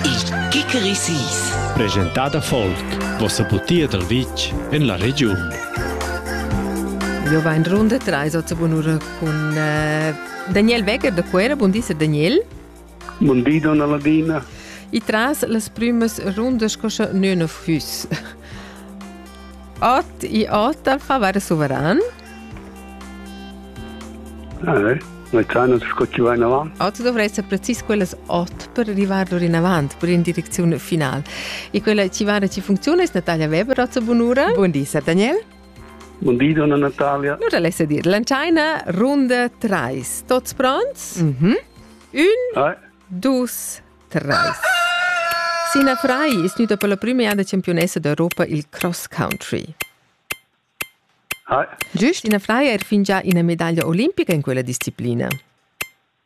Il Kikerisis. Presentada Folk, vossa butia dal vitg en la regiun. Jo va in runda trais ozza bunura cun eh, Daniel Wecker da Cuera. Bun di, Daniel. Bun di, donna Ladina. E tras las primas rundas cosa nöna füs. Ot e ot al favare suveran. Eh, mezzanus sco chi va inavant. Oz dovressa precis quellas otg per arrivar orinavant, per in direczione finale. E quella ci va ci funziona es Natalia Weber oz bunura. Buon di, Daniel. Buon di, donna Natalia. Nu l'essa dir, lanciaina runda 3. Tots pronts? Mhm. Un, eh. dus, tres. Sina Fry ist nüda per la prima jada campionessa d'Europa il cross country. Giust ina fraia er fingià ina medaglia olimpica in quella disciplina?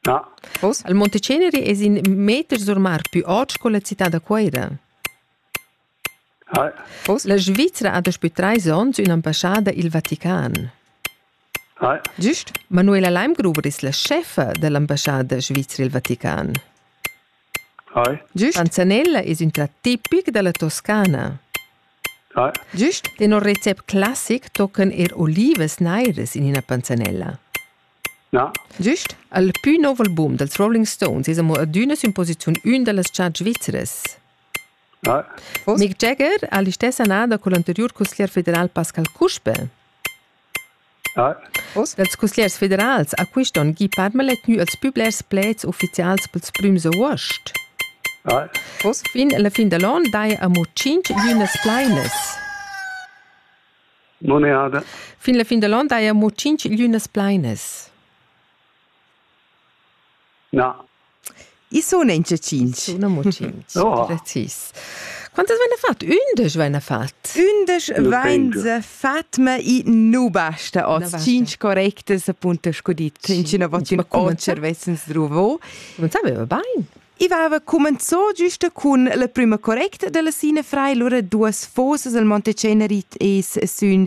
Na. Oz al Monteceneri es in meter sur mar pü ot sco la cità da Cuoira. Oz la Svizra ha daspü trais ons ün'ambassada i'l Vatican. Giust Manuela Leimgruber es la chefa da l'ambassada svizra i'l Vatican. Gist Anzanella es ün trat tipic da la Toscana. Gist tenor recept classic toccan eir olivas nairas in üna panzanella. Gist al pü nouv album dals Rolling Stones es amo adüna sün posiziun ün da las chart svizras. Mick Jagger ha l'istessa annada cul anteriur cusglier federal Pascal Cuspe. Oz ch'ils cusgliers federals a quist on gie permalet gnü els pü blers pleds ufficials pels prüms avuost. Oz fin la fin da l'on daja amo tschinch glinas plainas. Fin la fin da l'on daja amo tschinch glinas plainas. Na. I sun in tschinch. Sun amo tschinch. Oh. Precis. Quantas vaina fat? Ündesch vaina fat? Ündesch vainsa fat, ma i nu basta hoz. Tschinch correctas appunto sco dit. Tschinchina vattin o cervessens druvo. Cumenzava bain. I vava cumenzò giusta cun la prüma correcta della Sina Frei, lura duas fosas al Monte Cenerit es sün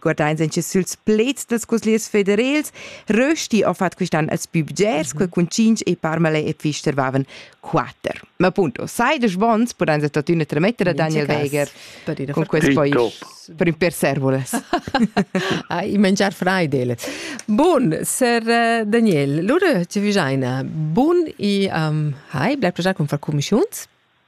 Guardains in süls pleds dels cusgliers federels, rösti ho fat quist'an als bübgers, que cun cinc e parmale e fistervaven quatter. Ma punto, sai des bons, pudains a totüna trametter a Daniel Weger con quest pais per ün per servoles. ah, i mangiar freidelet. Bun, ser eh, Daniel, lura ci vijaina bun i um, hai, blai projar cum far commissiuns?